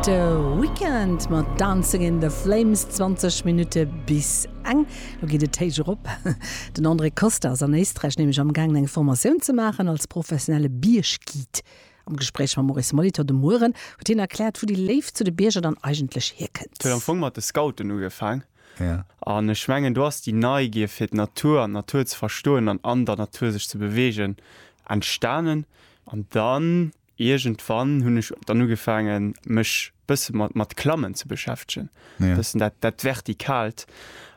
De Weekend mat Dancing in the Flames, 20 Minutte bis eng. Lo geet et héich erop. Den André Costa ass an Éisträich nämlech am gaangen eng Formatioun ze maachen als professionelle Bierg-Guide. Am Gespréich mam Maurice Molitor de Mueren huet hien erkläert, wou déi Léift zu de Bierger dann eigentlech hierkënnt. Huet am Fong mat de Scouten ugefaang. An ech mengen do ass déi Neigier fir d'Natur an d'Natur ze verstoen an an der Natur sech ze beweegen entstanen. An dann Iergendwann hunn ech dann ugefaangen, mech bësse mat, mat Klammen ze beschäftegen, Ja. bëssen dat, dat Vertikalt.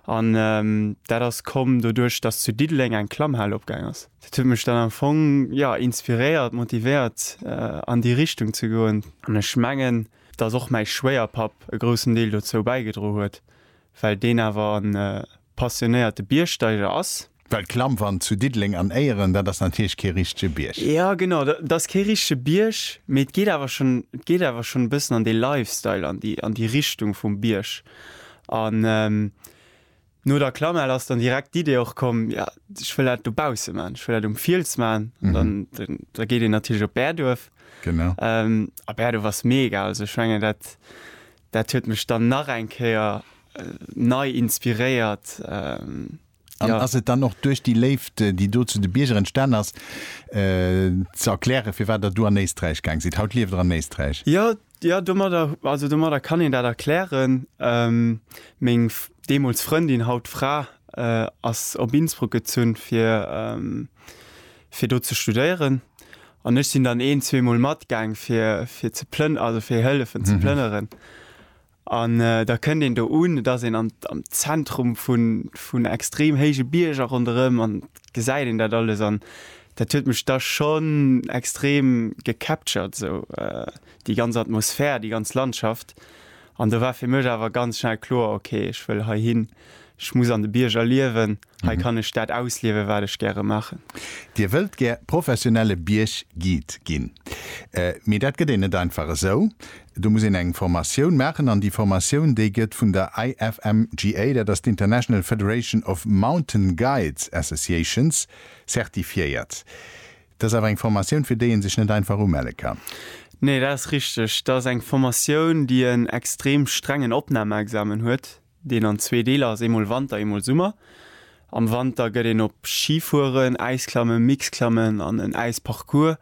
An ähm, dat ass komm doduerch, dass zu Diddeleng eng Klammhal opgaang ass. Dat huet mech dann am Fong, ja, inspiréiert, motivéiert, äh, an déi Richtung ze goen. An ech mengen, dass och mäi Schwéierpapp e groussen Deel dozou bäigedroen huet, well deen awer en äh, passionéierte Biergsteiger ass. Well d'Klammwand zu Diddeleng an Éieren, dat ass natierlech kee richtege Bierg. Jo, genau, dat ass kee richtege Bierg, mee et geet awer schonn, et geet awer schonn e bëssen an dee Lifestyle, an déi, an déi Richtung vum Bierg. An no der Klammhal ass dann direkt d'Idee och komm, jo, ech wëll dat dobausse maachen, ech wëll dat um Fiels maachen. An dann, da geet een natierlech op Bäerduerf. Genau. A Bäerduerf ass mega. Also ech mengen, dat, dat huet mech dann nach eng Kéier nei inspiréiert. An ja. ass et dann och duerch déi Léift, déi do zu de Bierger entstan ass, äh, ze erklären, firwat Der do an Éisträich gaang sidd? Haut lieft Der an Éisträich. Ja, ja, domadder, also domadder kann een dat erklären. Ähm, meng deemools Frëndin, haut Fra, äh, ass op Innsbruck gezunn, fir, ähm, fir do ze studéieren. An ech sinn dann een-, zweemol matgaang, fir, fir ze plën-, also fir hëllefen ze plënneren. An da kënnt een do un, et ass een am Zentrum vun extrem héije Bierger ronderëm an gesäit een dat alles an dat huet mech da schonn extrem gecaptured esou déi ganz Atmosphär, déi ganz Landschaft. An do war fir mech awer ganz schnell kloer, ok ech wëll heihinn. Ech muss an de Bierger liewen. Hei kann ech dat ausliewen, wat ech gäre maachen. Dir wëllt gär professionelle Bierg-Guide ginn. Mee dat gëtt een net einfach esou. Do muss een eng Formatioun maachen. An déi Formatioun, déi gëtt vun der IFMGA, dat ass d'International Federation of Mountain Guides Associations, zertifiéiert. Dat ass awer eng Formatioun, fir déi ee sech net einfach umelle kann. Nee, dat ass richteg. Dat ass eng Formatioun, déi en extrem strengen Opnamexamen huet. deen an zwee Deeler ass, eemol Wanter, eemol Summer. Am Wanter gëtt een op Schifueren, Äisklammen, Mixklammen an en Äisparcours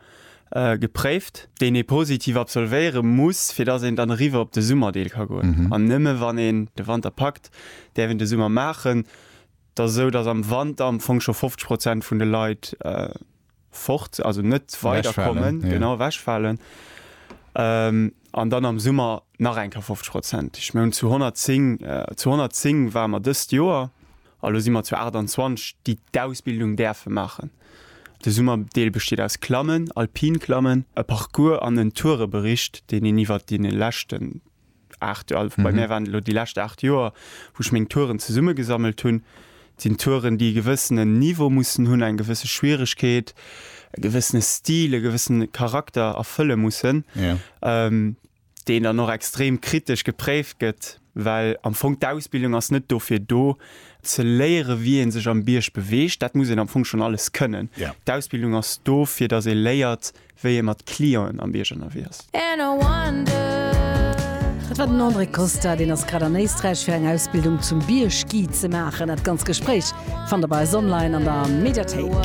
gepréift, deen ee positiv absolvéiere muss, fir datt een dann eriwwer op de Summerdeel ka goen. An nëmme wann een de Wanter packt, däerf een de Summer maachen. Et ass esou, datt am Wanter am Fong scho 50 Prozent vun de Leit fort, also net weiderkommen, genau ewechfalen ähm, an dann am Summer nach eng Kéier 50 Prozent. Ech mengen zu 110, äh, zu 110 war mer dëst Joer, a lo si mer zu 28, déi d'Ausbildung däerfe maachen. De Summerdeel besteet aus Klammen, Alpinklammen, e Parcours an en Tourebericht, deen een iwwert dee leschten 8 Joer, bei mir waren et elo déi lescht 8 Joer, wou ech meng Touren zesummegesammelt hunn. Et sinn Touren, déi e gewëssenen Niveau mussen hunn, eng gewësse Schwieregkeet, e gewëssene Stil, e gewëssene Charakter erfëlle mussen, deen dann och extrem kritesch gepréift gëtt, well am Fong d'Ausbildung ass net dofir do, ze léiere wéi ee sech am Bierg beweegt, dat muss een am Fong schonn alles kënnen. D'Ausbildung ass do, fir datt ee léiert, wéi ee mat Clienten am Bierg ënnerwee ass. Dat war den André Costa, deen ass grad an Éisträich fir eng Ausbildung zum Biergguide ze maachen. Dat ganz Gespréich fannt der bei eis online an der Mediathéik.